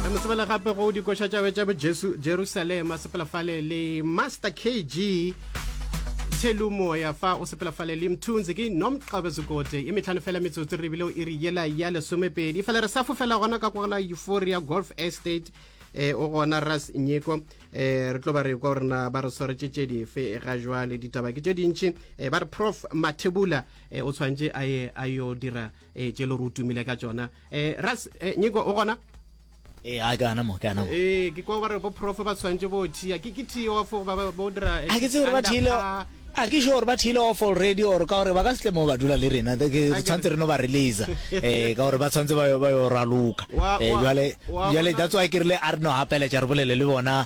re mo tsebela gape go dikoša tšabe tša bojesu jerusalema sepelafale le master kg thelu moya fa o sepelafale le mthunzi ke nomqabe zekote e metlhano fela metsotso re bile o iri yela ya lesomepedi fela re sa fofela gona ka kogela euphoria golf estate eh o gona ras nyeko eh re tlo ba re kwa gore na ba re swaretse tše dife ga jwale ditaba ke tše dintši eh ba re prof mathebula eh o tshwanetse a ye a yo dira e tše lo re o tumile ka tšona um ras eh, nyiko o gona ee a ke ana mo ke ana mo ee ke kwa gore bo prof ba tshwanetse bo thia ke ke thio fo ba bo dira a ke tse gore ba thile a ke sure gore ba thile off already or ka gore ba ka setle mo ba dula le rena re tshwanetse re no ba releasa um ka gore ba tshwanetse ba yo raloka um jale that's why ke rile a re no gapeletša re bolele le bona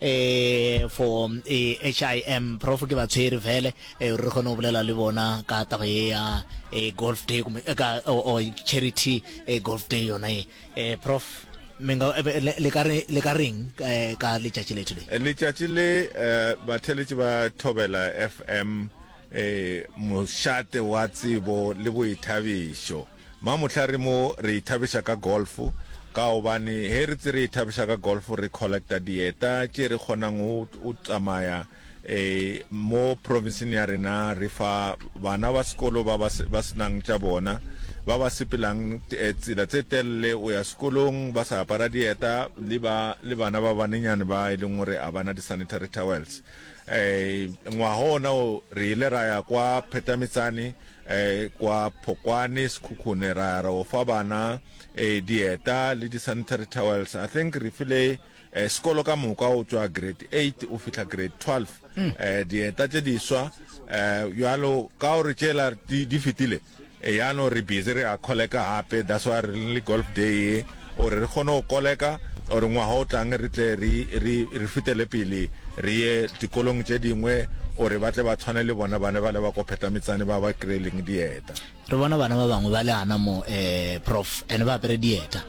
eh for eh HIM prof ke ba tshwere vele eh re gone go bolela le bona ka taba ye ya eh golf day eh, ka o oh, oh, charity eh golf day yona e eh prof menga eh, le ka re le ka reng ka letšatši le today letšatši le ba theletše ba thobela FM eh mošate wa tsebo le boithabišo Ma mohla re mo re ithabiša ka golf ka gobane he re tse re ithabiša ka golf re collecta dieta tše re kgonang go o tsamaya eh, mo provinsing ya rena re fa bana ba sekolo ba ba, ba senang tša bona ba ba sepelang eh, tsela tse telele o ya sekolong ba sa apara dieta le ba le bana ba banenyane ba e leng gore a bana di-sanitary towels um ngwaga ona o re ile ra ya kwa phetametsane um kwa phokwane sekhukhune ra ya ra o fa bana um dieta le di-sanitary towels i think re file um sekolo ka moka o tswa grade eight o fitlha grade twelve um dieta tse diswa um jalo ka gore tšela di fetile Eya no re busy re a koleka gape that's why re le golf day ye gore re kgone go koleka gore ngwaga o tlang re tle re re re fetele pele re ye dikolong tše dingwe gore ba tle ba tshwane le bona bana bale ba ko Phetametsane ba ba kry-eleng dieta. Re bona bana ba bangwe ba le gana mo eh prof and ba apere dieta.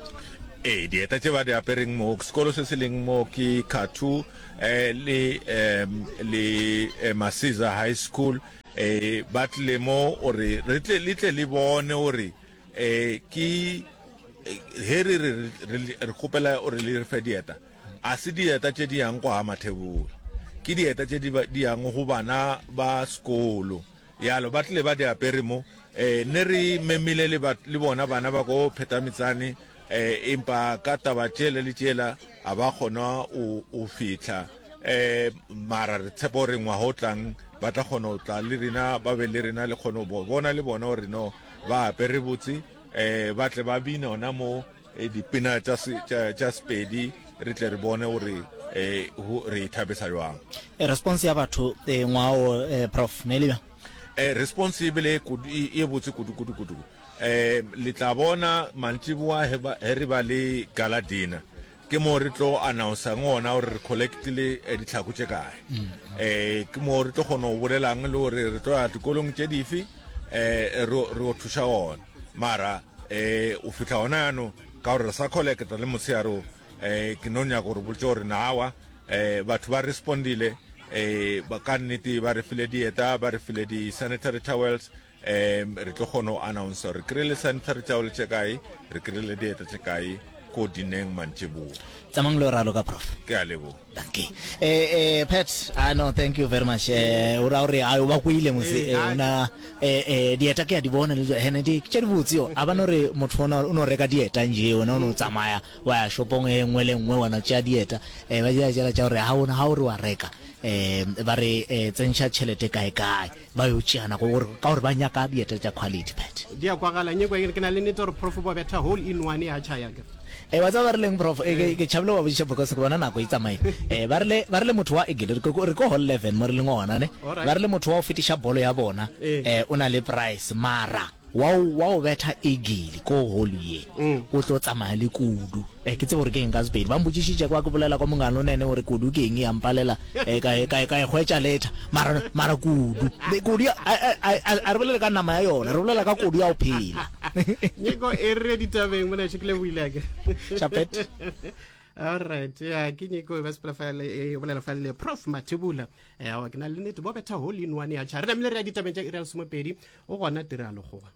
Ee dieta tše ba di apereng mo sekolo se se leng mo ke Khathu eh le eh le eh, Masiza High School. E, ba tlile mo o re re tle le tle le bone o re e ke he re re re kgopela o re le re fe dieta a se dieta tše di yang kwa mathebolo ke dieta tše di yang go bana ba sekolo yalo ba tlile ba di apere mo um ne re memile le bona bana ba ko phetametsane Empa ka taba tšela le tšela a ba kgona o, o fihla um mara re tshepa gore ngwaga o tlang ba tla kgona go tla le rena ba be le rena le kgone go bona le bona gore no ba apere botse um ba tle ba bina ona mo eh, dipina tša sepedi re tle re bone gore um re e thabisa jwang eh, response ya batho ngwao prof ne e le bjang response e bele e botse kudu kudu kudu Le tla bona mantšiboa ge ba, ge re ba le gala dinner, ke moo re tlo announcer ngona gore re collectile eh, ditlhako tše kae mm. eh ke moo re tlo kgona go bolelang le gore re tlo ya dikolong tše dife eh re o thuša gona mara eh o fitlha gona yanong ka gore re sa collecta le motsheyareo eh ke no nyaka gore boletse gore naawa eh batho ba respondile eh ba ka nnete ba re file dieta ba re file di-sanitary towels um re tlo kgona go announce gore kry le centre re tšaole tše kae re kry le dieta tše kae ko dineng mantšeboa tsamang lo ralo ka prof ke a lebo danke eh eh pet ah no thank you very much eh o ra gore a o ba kwile mose eh, eh ona eh eh dieta ke a di bona le hene di ke di botsi yo aba no re motho ona o no reka dieta nje ona o no tsamaya wa ya shopong e nngwe le nngwe wana tša dieta eh ba ja jela tša gore ha ona ha o re wa reka eh ba re eh, tsentsha chelete kae kae Ba yo tšeana go gore, ka gore ba nyaka dieta tša quality, Pat. Di a kwagala, nyeko eng? Ke na le nete gore Prof bo betha hole in one ya tšha ya ka. E, wa tseba ba rileng, Prof? E, ke tšhabile go ba botšiša because ke bona nako e tsamaile. E, ba rile, ba rile motho wa, e, ke re ko hole 11 mo re leng gona, ne? Ba rile motho wa go fetiša bolo ya bona, e, o na le price, mara. Wa o wa o betha egili ko holu ye, o tlo tsamaya le kudu. Eh, ke tsebe gore ke eng ka Sepedi. Ba mpotšišitše kwa ke bolela kwa mongano nene gore kudu ke eng ya mpalela, eh, ka e, ka e, ka e hwetša later. Mara, mara kudu, be, kudu ya, a, a, a, a, a re bolele ka nama ya yona, re bolela ka kudu ya go phela. Nyeko e re ditabeng mona še ke leboile ake. Chapet. All right. Yeah, ke Nyeko e ba sepela fa e bolela fa le Prof Mathibula. ewa ke na le nete bo betha hole in one ya cha re namile re ya ditabeng tša iri ya lesomepedi o gona tiragalo goba